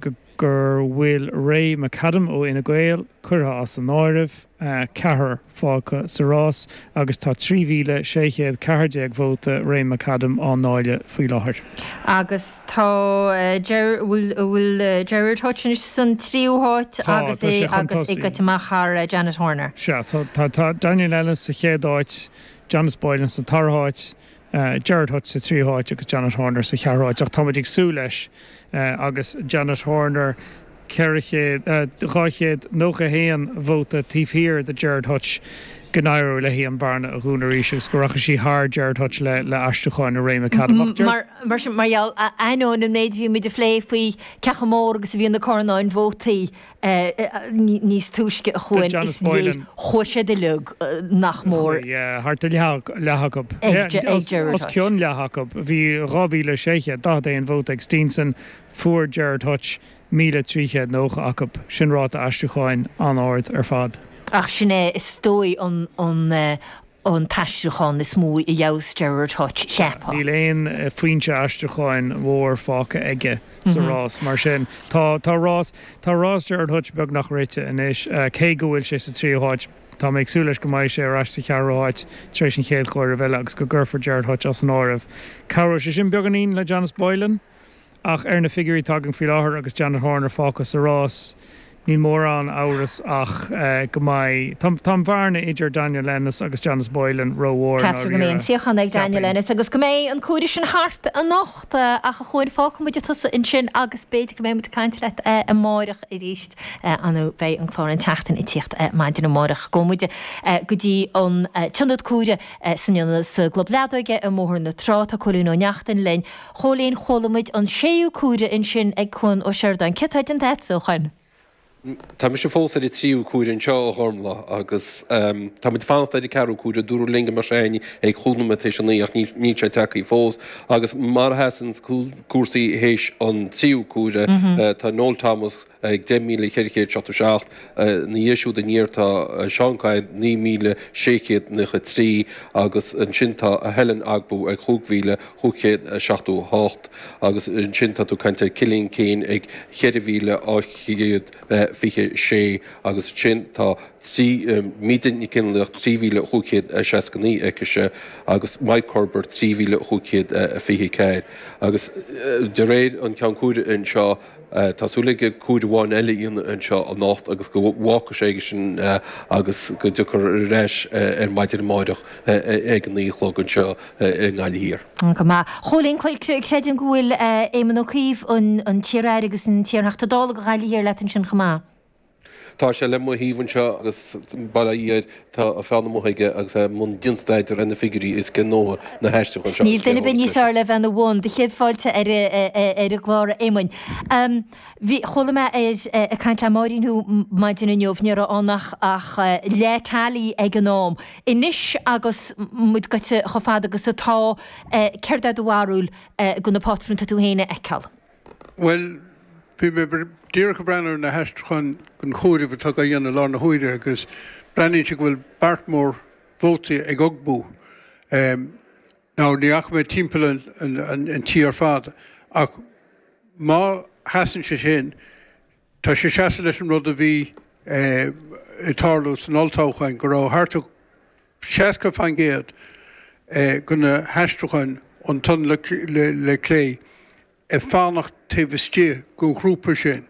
go gur bhfuil Ray McAdam ó Fhine Gael curtha as an áireamh, ceathrar fágtha sa rás agus tá 3,614 vóta Ray McAdam á ndáileadh faoi láthair. Agus tá Ger, a bhfuil Gerard Hutch anois san tríú háit Tá, agus tá é sé chun agus é tosaigh. gaibhte amach thar Janet Horner. Sea, tá, tá, tá Daniel Ennis sa chéad áit, Janice Boylan sa dara háit, Gerard Hutch sa tríú háit agus Janet Horner sa cheathrú háit ach tá muid ag súil leis agus Janet Horner 400, 291 vóta taobh thiar de Gerard Hutch go n-éireoidh léi an bhearna a dhúnadh arís agus go rachaidh sí thar Gerard Hutch le aistriúcháin Ray McAdam. Mar sin mar gheall, ainneoin an méid a bhí muid a phlé faoi cé chomh mór agus a bhíonn na carnáin vótaí, níos túisce a Chuain. Yeah, chuaigh siad uilig nach mór, thart ar leath acu, os cionn leath acu, bhí 2,641 vóta ag Steenson, fuair Gerard Hutch 1,390 acu, sin ráta aistriúcháin an-ard ar fad. Ach sin é is dóigh an. an t-aistriúchán is mó a gheobhas Gerard Hutch, cheapfá. Níl aon fhoinse aistriúcháin mhór fágtha aige sa rás, mar sin. Tá tá rás tá rás Gerard Hutch beagnach rite anois. Cé go bhfuil sé sa tríú háit, tá mé ag súil leis go mbeidh sé ar ais sa cheathrú háit tar éis an chéad chomhaireamh eile agus go gcuirfear Gerard Hutch as an áireamh. Cabhróidh sé sin beagáinín le Janice Boylan. Ach ar na figiúirí atá againn faoi láthair agus Janet Horner fágtha sa rás níl mórán amhras ach go mbeidh, tá an bhearna idir Daniel Ennis agus Janice Boylan rómhór i ndáiríre, cheapfainn. Ceaptar go mbeidh an suíochán ag Daniel Ennis agus go mbeidh an comhaireamh sin thart anocht ach a Chuain fágfaidh muid tusa ansin agus b'fhéidir go mbeidh muid ag caint leat amárach arís nó beidh an clár An tSeachtain ag tíocht maidin amárach. Gabhfaidh muid go dtí an t-ionad cuairte sa gClub Leadóige i mBóthar na Trá, tá Cóilín Ó Neachtain linn, Chóilín Chuala muid an séú comhaireamh ansin ag Cuan Ó Seireadáin. Cén staid atá agatsa, a Chóilín? Tá mise fós ar an tríú comhaireamh anseo, a Ghormfhlaith, agus tá muid ag fanacht ar an ceathrú comhaireamh. Dúradh linn go mbeadh sé ann ag chúig nóiméad tar éis a naoi ach níl sé tagtha fós. Agus mar a sheasann cúrsaí théis an tríú comhaireamh, tá Noel Thomas, ag 10,477. Ina dhiaidh siúd aniar tá Seán Kyne 9,693 agus ansin tá Helen Ogbu ag chúig mhíle, chúig chéad a seachtó a hocht agus ansin tá tú ag caint ar Cillian Keane ag cheithre mhíle, ocht gcéad fiche sé agus ansin tá trí, Míde Nic Fhionnlaoich trí mhíle, chúig chéad a seasca naoi aicise agus Mike Cubbard trí mhíle, chúig chéad a fiche ceathair agus de réir an cheann comhairimh anseo. Tá súil aige comhaireamh amháin eile a dhéanamh anseo anocht agus go bhfágfaidh sé aige sin agus go dtiocfar ar ais ar maidin amáireach ag a naoi a chlog anseo i nGaillimh Thiar. Go maith. Chóilín, creidim go bhfuil Éamon Ó Cuív, an t-iar-aire agus an t-iar-Theachta Dála do Ghaillimh Thiar leat ansin chomh maith. Tá sé le mo thaobh anseo agus bail ó Dhia air, tá a pheann amuigh aige agus é i mbun dianstaidéir ar na figiúirí is dóigh. Ní haisteach. Níl aon duine ar bith níos fhearr le bheith ina bhun do chéad fáilte ar an gclár, a Éamoinn. Chuala mé ag caint le Máirín thú ar maidin inniu, ní raibh ann ach leath teailí ag an am. Anois agus muid goite chomh fada agus atá, céard é do bharúil de na pátrúin atá tú féin a fheiceáil? Bhuel, bhí mé díreach ag breathnú ar na haistriúcháin den chomhaireamh atá á dhéanamh i lár na huaire agus breathnaíonn sé go bhfuil beart mór vótaí ag Ogbu. Now ní fhaca mé timpeall an tí ar fad ach má sheasann sé sin, tá sé ag seasamh leis an rud a bhí ag tarlú san olltoghchán, go raibh thart 60% de na haistriúcháin ón taobh clé ag fanacht taobh istigh den ghrúpa sin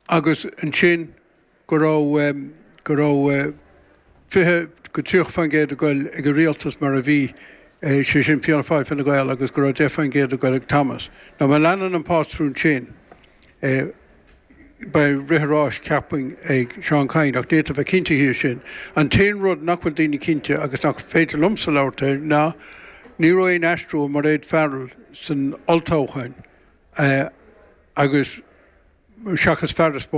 agus ansin go raibh 20-30% ag goil ag an rialtas mar a bhí, sé sin Fianna Fáil, Fine Gael agus go raibh 10% ag goil ag Thomas. Now má leanann an pátrún sin, beidh rith an ráis, cheapfainn, ag Seán Kyne, ach ní fhéadfá a bheith cinnte faoi sin. An t-aon rud nach bhfuil daoine cinnte, agus nach féidir liomsa labhairt air, ná ní raibh aon aistriú ó Mairéad Farrell san olltoghchán agus, seachas fear a